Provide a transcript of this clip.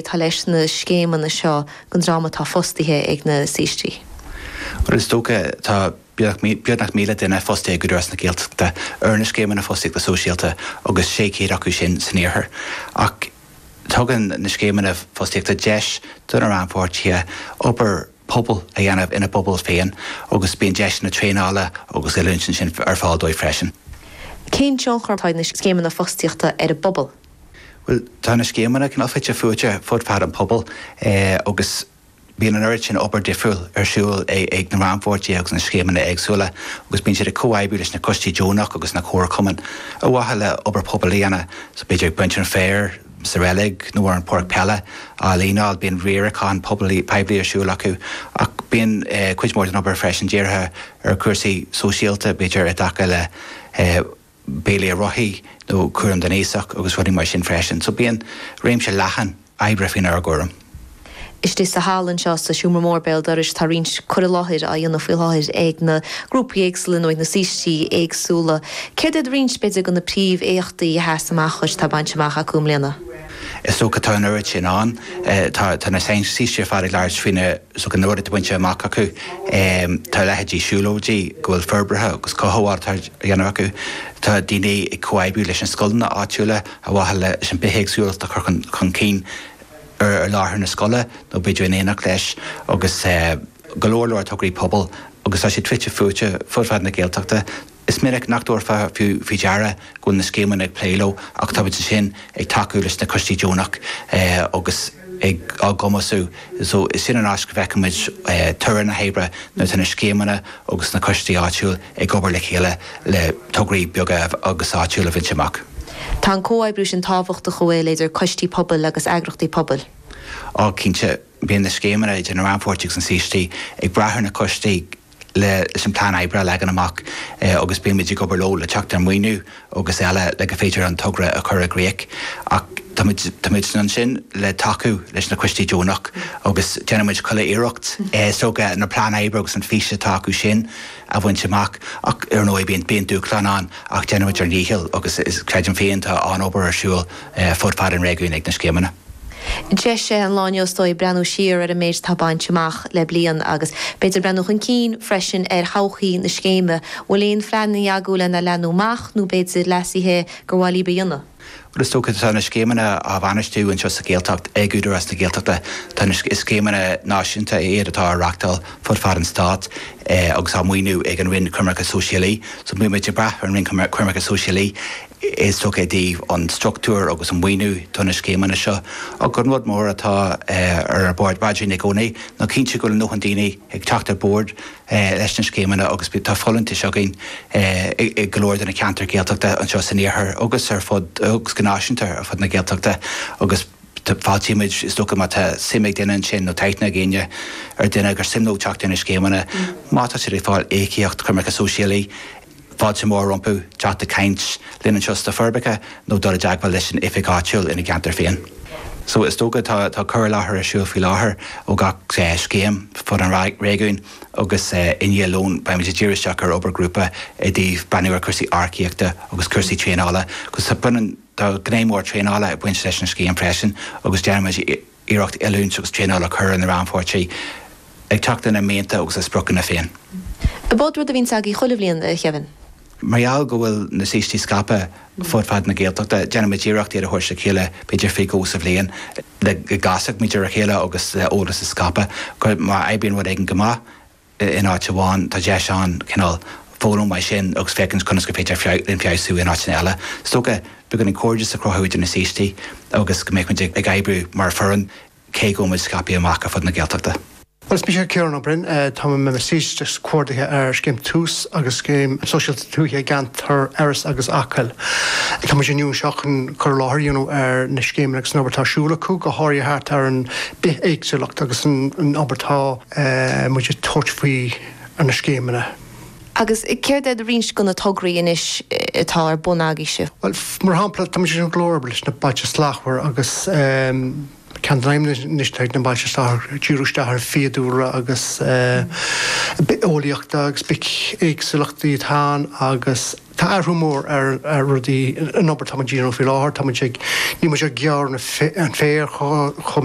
atá leis na scéimeanna seo don dream atá fostaithe ag na saoistí. Is dócha, tá beagnach 1,000 duine fostaithe ag Údarás na Gaeltachta ar na scéimeanna fostaíochta sóisialta agus 600 acu sin san iarthar. Ach tugann na scéimeanna fostaíochta deis do na rannpháirtithe obair pobail a dhéanamh ina bpobal féin agus bíonn deiseanna traenála agus oiliúint ansin ar fáil dóibh freisin. Cén tionchar atá ag na scéimeanna fostaíochta ar an bpobal? Bhuel, tá na scéimeanna cineál fite fuaite fud fad an phobail agus bíonn an oiread sin obair dhifriúil ar siúl ag na rannpháirtithe agus na scéimeanna éagsúla agus bíonn siad ag comhoibriú leis na coistí deonach agus na comharchumainn ar mhaithe le obair pobail a dhéanamh, so b'fhéidir ag baint an fhéir sa reilig nó an pháirc peile á líneáil, bíonn riarachán poiblí, poiblí ar siúl acu ach bíonn cuid mhór den obair freisin dírithe ar chúrsaí sóisialta, b'fhéidir i dtaca le. béilí ar rothaí nó cúram don aosach agus rudaí mar sin freisin. So bíonn réimse leathan oibre faoinár gcúram. Istigh sa halla anseo sa seomra mór béal dorais tá roinnt cur i láthair á dhéanamh faoi láthair ag na grúpaí éagsúla nó ag na saoistí éagsúla. Céard iad roinnt, b'fhéidir, de na príomhéachtaí a sheas amach dhuit atá bainte amach acu i mbliana? Is dócha tá an oiread sin ann. Tá na saoistí ar fad ag labhairt faoi na. so go n-uair atá bainte amach acu tá a leithéidí siúlóidí go bhfuil forbairt agus cothabháil á dhéanamh acu, tá daoine ag comhoibriú leis na scoileanna áitiúla ar mhaithe leis an mbithéagsúlacht a chur chun cinn ar láthair na scoile nó b'fhéidir in éineacht leis agus go leor leor tograí pobail agus tá siad fite fuaite fud fad na Gaeltachta. Is minic nach dtabharfá fiú faoi deara go bhfuil na scéimeanna ag plé leo ach táimid ansin ag tacú leis na coistí deonach agus á gcumasú so is sin an áit go bhfeicimid toradh na hoibre nuair atá na scéimeanna agus na coistí áitiúil ag obair le chéile le tograí beaga agus áitiúil a bhaint amach. Tá an comhoibriú sin tábhachtach an bhfuil idir coistí pobail agus eagrachtaí pobail. Á, cinnte. bíonn na scéimeanna idir na rannpháirtithe agus na saoistí ag brath ar na coistí leis an bplean oibre a leagan amach agus bímid ag obair leo le teacht ar mhaoiniú agus eile le gur féidir an togra a chur i gcrích ach táimid ansin le tacú leis na coistí deonach agus déanaimid chuile iarracht is dócha an plean oibre agus an fhís atá acu sin a bhaint amach ach ar ndóigh bíonn dúshláin ann ach déanaimid ár ndícheall agus creidim féin tá an-obair ar siúl fud fad an réigiúin ag na scéimeanna. Deis é an lá inniu is dóigh breathnú siar ar an méid atá bainte amach le bliain agus b'fhéidir breathnú chun cinn freisin ar thodhchaí na scéime. An bhfuil aon phlean agaibh lena leathnú amach nó b'fhéidir leasaithe gur mhaith libh a dhéanamh? Bhuel is dócha tá na scéimeanna á bhainistiú anseo sa Ghaeltacht ag Údarás na Gaeltachta. Tá, scéimeanna náisiúnta iad atá á reachtáil fud fad an stáit agus á maoiniú ag an Roinn Coimirce Sóisialaí. So bímid ag brath ar an Roinn Coimirce Sóisialaí is dócha, i dtaobh an struchtúir agus an maoiniú do na scéimeanna seo. Ach an rud mór atá ar bhord againn i gcónaí ná cinntiú go bhfuil a ndóthain daoine ag teacht ar bord leis na scéimeanna agus tá folúntais againn i go leor de na ceantair Ghaeltachta anseo san iarthar agus ar fud, agus go náisiúnta, ar fud na Gaeltachta agus fáiltímid, is dócha, má tá suim ag duine ansin nó tá aithne ag éinne ar duine gur suim leo teacht ar na scéimeanna, má tá siad ag fáil íocaíocht coimirce sóisialaí. fáilte mhór rompu teacht ag caint linn anseo sna Forbacha nó dul i dteagmháil leis an oifig áitiúil ina gceantar féin. So is dócha tá cur i láthair ar siúl faoi láthair ó gach scéim fud an réigiúin agus i ndiaidh lón beimid ag díriú isteach ar obair ghrúpa i dtaobh breathnú ar chúrsaí earcaíochta agus cúrsaí traenála agus tá gné mhór traenála ag baint leis an scéim freisin agus déanfaimid iarracht oiliúint agus traenáil a chur ar na rannpháirtithe, ag teacht lena mianta agus a spriocanna féin. An b'eod rud a bhíonn agaibh chuile bhliain, a Khevin. Mar gheall go bhfuil na saoistí scaipthe fud fad na Gaeltachta, déanaimid iarracht iad a thabhairt le chéile b'fhéidir faoi dhó sa bhliain le go gcasfadh muid ar a chéile agus eolas a scaipeadh. Má oibríonn rud éigin go maith, in áit amháin, tá deis ann cineál foghlaim as sin agus féachaint conas gur féidir linn feabhsú in áiteanna eile. Is dócha, beagáinín cairdeas a chruthú idir na saoistí agus go mbeadh muid ag oibriú mar foireann, cé go bhfuil muid scaipthe amach ar fud na Gaeltachta. Bhuel, is mise Ciarán Ó Broin. Táim i mo saoiste agus comhordaitheoir ar scéim tús agus scéim sóisialta tuaithe i gceantar Iorras agus Acaill. Tá muid inniu anseo chun cur i láthair a dhéanamh ar na scéimeanna agus an obair atá ar siúl acu, go háirithe thart ar an bithéagsúlacht agus an obair atá muid ag tabhairt faoi ar na scéimeanna. Agus céard iad roinnt de na tograí anois atá ar bun agaibh sibh? Bhuel, mar shampla, tá muid ag obair leis na Bailte Slachtmhar agus ceann de na haidhmeanna anois atá ag na Bailte Slachtmhar díriú isteach ar fiadhúlra agus bitheolaíocht agus bithéagsúlachtaí atá ann agus tá athrú mór ar rudaí, an obair atá muid a dhéanamh faoi láthair, tá muid ag, níl muid ag gearradh an féir chomh.